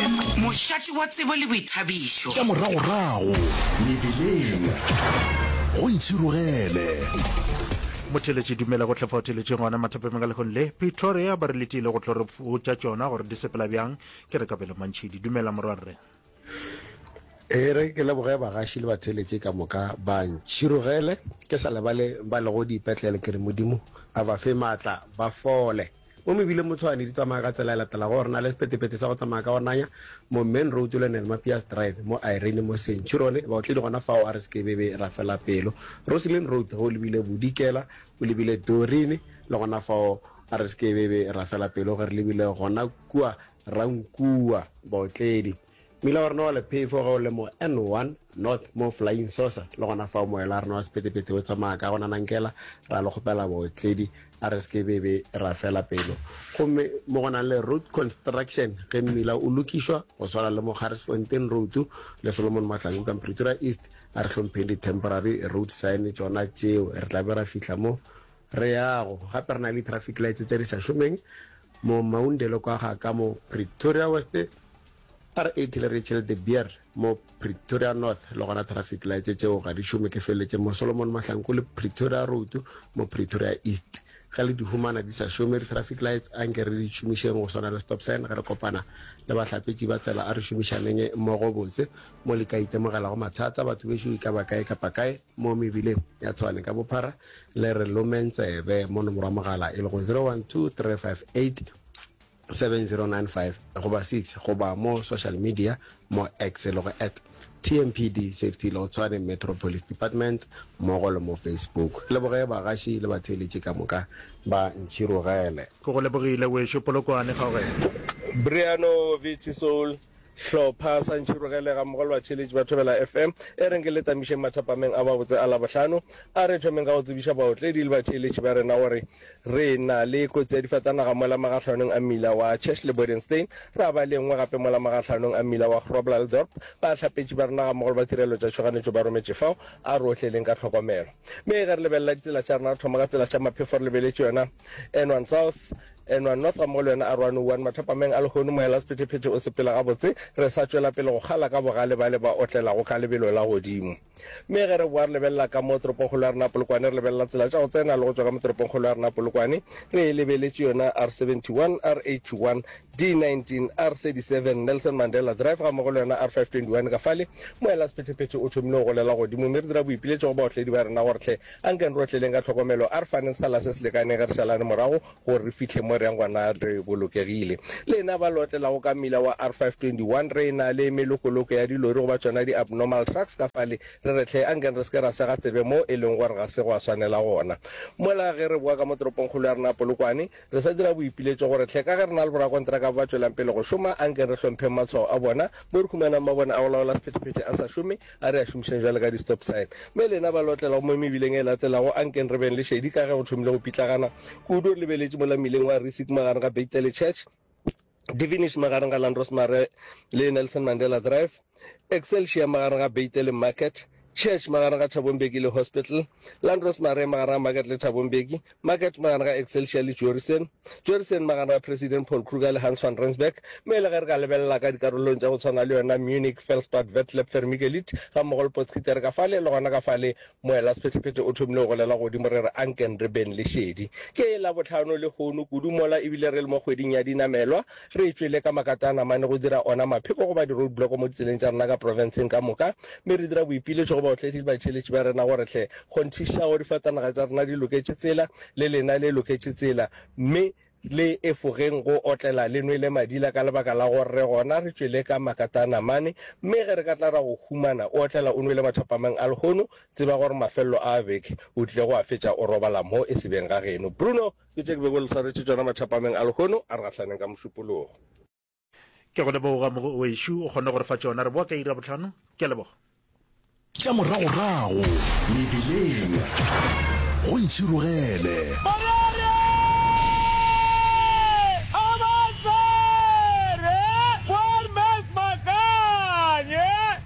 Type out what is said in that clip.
Mošate wa tsebo le boithabišo. Tša moragorago mebeleng go ntšhirogele. Motheeletši Dumela go tlhefa theeletšeng gona mathapemeng ka lehong le Pretoria ba re le tiile go tlo re botša tšona gore di sepela bjang ke re kabelo mantšhidi dumela morwarre e re ke leboge bagaši le batheeletši ka moka ba ntšhirogele ke sa lebale ba lego diipetlele ke re modimo a ba fe maatla ba fole Mo mebileng mo Tshwane di tsamaya ka tsela e latelago, gore na le sepetepete sa go tsamaya ka onanya mo Main Road le Nel Mapias Drive mo Irene mo Centurion, baotledi gona fao a re se ke be be ra fela pelo. Roslyn Road ge o lebile Bodikela o lebile Dorin le gona fao a re se ke be be ra fela pelo ge re lebile gona kua Rankuwa, baotledi. Mmila wa rena wa lephefo ge o le mo N1 North mo Flying Saucer, le gona fao moela wa rena wa sephethephethe o tsamaya ka go nanankela, ra le kgopela baotledi a re se ke be be ra fela pelo. Gomme mo go nang le road construction ge mmila o lokišwa, go swana le mo Garrisfontein Road le Solomon Mahlangu ka Mpretura East, a re hlompheng di temporary road sign tšona tšeo, re tla be ra fihla mo re yago. Gape re na le di traffic lights tše di sa šomeng Mo Maundelo kwa ga ka mo Pretoria West are a killer Rachel de Beer mo Pretoria North le gona traffic lights tšeo ga di šome ke feleletše mo Solomon Mahlanku le Pretoria Road mo Pretoria East ge le di humana di sa šome di traffic lights a nke re di šomišeng go swana le stop sign ge re kopana le bahlapetši ba tsela a re šomišaneng mmogo botse mo le ka itemogelago mathata batho bešo e ka ba kae kapa kae mo mebileng ya Tshwane ka bophara le re lomeng tsebe mo nomoro ya mogala e lego 0123587095 goba 6 goba mo social media mo x e lego at tmpd safety lo tshwane metro police department mmogo le mo facebook ke leboge bagaši le batheeletši ka moka ba ntšhirogele ke go lebogile wešo polokwane kgaogelo Briano Vici Soul Hlopha sa Ntšhirogele gammogo le batšheletši ba Thobela FM e reng ke le tamišeng mathapameng a gabotse a Labohlano. A re thomeng ka go tsebiša baotledi le batšheletši ba rena gore re na le kotsi ya difatanaga mola magahlanong a mmila wa Church le Bodenstein, ra ba le e nngwe gape mola magahlanong a mmila wa Groblersdorp. Bahlapetši ba rena gammogo le ba tirelo tša tšhoganetšo ba rometše fao. A re otleleng ka tlhokomelo. Mme ge re lebelela ditsela tša rena, re thoma ka tsela tša maphefo re lebeletše yona N1 South. Enwa North gammogo le wena Arowane Wuan mathapameng a lehono, Mohela Sephethephethe o sepela gabotse, re sa tšwela pele go kgala ka bogale bale ba otlelago ka lebelo la godimo. Mme ge re boa re lebelela ka mo toropongkgolo ya rena Polokwane, re lebelela tsela tša go tsena le go tšwa ka mo toropongkgolo ya rena Polokwane, re lebeletše yona R71, R81, D19, R37, Nelson Mandela Drive gammogo le yona R521 ka fale, Mohela Sephethephethe o thomile go golela godimo, mme re dira boipiletšo go baotledi ba rena gore hle Anke re otleleng ka tlhokomelo, a re faneng sekgala se se lekaneng ge re šalane morago gore re fihle mo re yang gona re bolokegile. Lena ba le otlelago ka mmila wa R521, re e-na le melokoloko ya dilori goba tšona di-abnormal trucks ka fale, re re hle, anke re se ke ra sega tsebe mo e leng gore ga se gwa swanela gona. Mola ge re boa ka mo toropongkgolo ya rena Polokwane, re sa dira boipiletšo gore hle, ka ge re na le borakontraka ba ba tšwelang pele go šoma, anke re hlompheng matshwao a bona mo re humanang mabone a go laola sephethephethe a sa šome, A re a šomišeng bjale ka di-stop sign. Mme lena ba lotlela gomme mebileng e latelago, a nkeng re beng le šedi ka ge go thomile go pitlagana kudu. Re lebeletše mola mmileng wa Rissick magareng ga Beittele Church, Devenish magareng ga Landros Mare le Nelson Mandela Drive, Excelsior magareng ga Beittele Market, Church magareng ga Thabo Mbeki le Hospital, Landros Mare magareng ga Market le Thabo Mbeki. Market magano ga Excelsior le Joerison, Joerison magano ga President Paul Kruger le Hans van Rensburg, mme le ge re ka lebelela ka dikarolong tša go tshwana le yona Munich, Felspad, Vetlab, Vermigelit, ga mmogo le Potgieter ka fale le gona ka fale, moela sephetephete o thomile go golela godimo re re anken re beng le šedi. Ke Labohlano lehono kudu mola ebile re le mo kgweding ya dinamelwa, Re tšwele ka makatana mane go dira ona mapheko goba di-road block mo ditseleng tša rena ka profenseng ka moka, mme re dira boipiletšo go baotledi le batšheletši ba rena gore hle kgonthišago difatanaga tša rena di loketše tsela, le lena le loketše tsela, mme le efogeng go otlela le nwele madila ka lebaka la gore re gona. Re tšwele ka makatana mane, mme ge re ka tla ra go humana o otlela o nwele mathapameng a lehono, tseba gore mafelelo a beke o tlile go a fetša o robala mo esebeng ga geno. Bruno! Ke tše ke bego le swaretše tšona mathapameng a lehono a re gahlaneng ka mošupologo. Ke go leboga Mogoešo, o kgonne go re fa tšona. Re boa ka iri ya bohlano. Ke a leboga. Tša moragorago mebeleng go ntšhirogele.